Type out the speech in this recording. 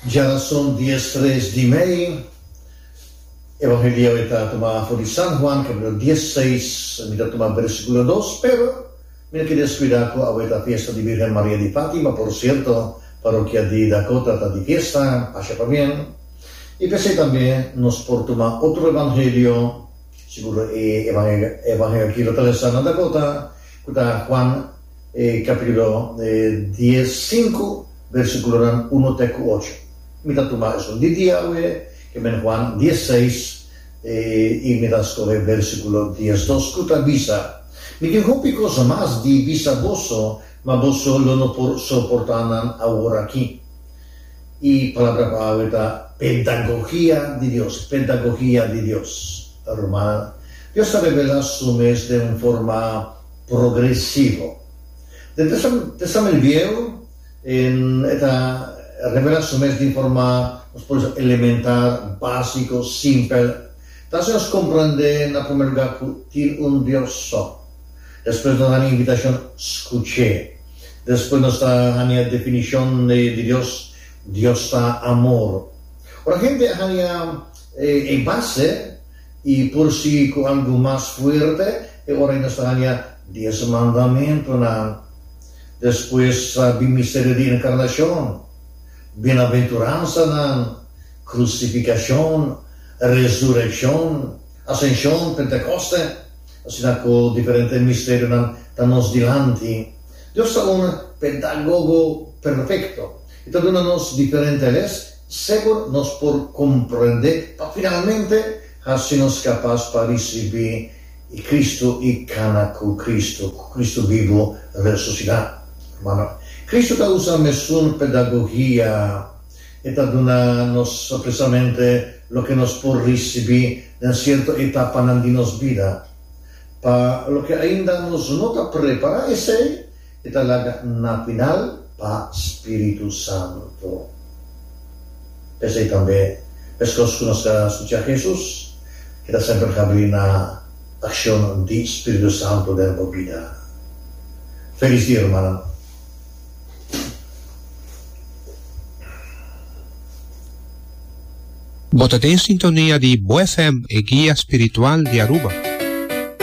Djarason dies tres di mei, e Evangelio e ta tuma afo di San Juan, capitulo dies seis, mi ta tuma versiculo dos, pero mi no ke descuida cu awe ta fiesta di Virgen Maria di Fatima, por cierto, parokia di Dakota ta di fiesta, pasha pa bien, y p'esei tambe nos por tuma otro Evangelio, seguro e Evangelio aki lo ta lesa na Dakota, cu ta Juan. E capitulo dies sinku versiculonan uno te cu ocho. Mi ta tuma esun di dia awe, ke men Juan dies seis, i mi ta scohe versiculo dies dos cu ta bisa, Mi tin hopi cos mas di bisa boso, ma boso lo no por soporta nan aworaki. E palabra pa awe ta pedagogia di Dios, pedagogia di Dios. Ruma Dios ta revela su mes den un forma. progresivo. Den Testamentu Viehu, e ta revela su mes den forma nos por bisa elementar, básiko, simpel. Ta hasi nos komprendé, na promé lugá, ku tin un Dios so. Despues nos hania invitashon skuch'é. Despues nos ta hania definishon di Dios, Dios ta amor. Ora hende a hania e base. I por sigui ku algu mas fuerte e ora i nos ta haña Dies Mandamentunan. Despues a bin misterio di Enkarnashon, Bienaventuransanan, Krusifikashon, Resurekshon, Asenshon, Pentekoste. Asina ku diferente misterionan ta nos dilanti, Dios ta un pedagogo perfekto. E ta duna nos diferente les. Segur nos por komprendé pa finalmente hasi nos kapas pa risibí e Kristu i kana ku Kristu, ku Kristu bibu resusitá. Hermano, Kristu ta usa mesun pedagogia. E ta duna nos presamente loke nos por risibí den sierto etapanan di nos bida. Pa loke ainda nos no ta prepará esei, E ta laga na final pa Spiritu Santo. P'esei tambe, meskos ku nos ka skucha Hesus, e ta semper habri na akshon di Spiritu Santo den bo bida. Felis di hermannan! Bo ta den sintonia di Bo FM, e guia spiritual di Aruba.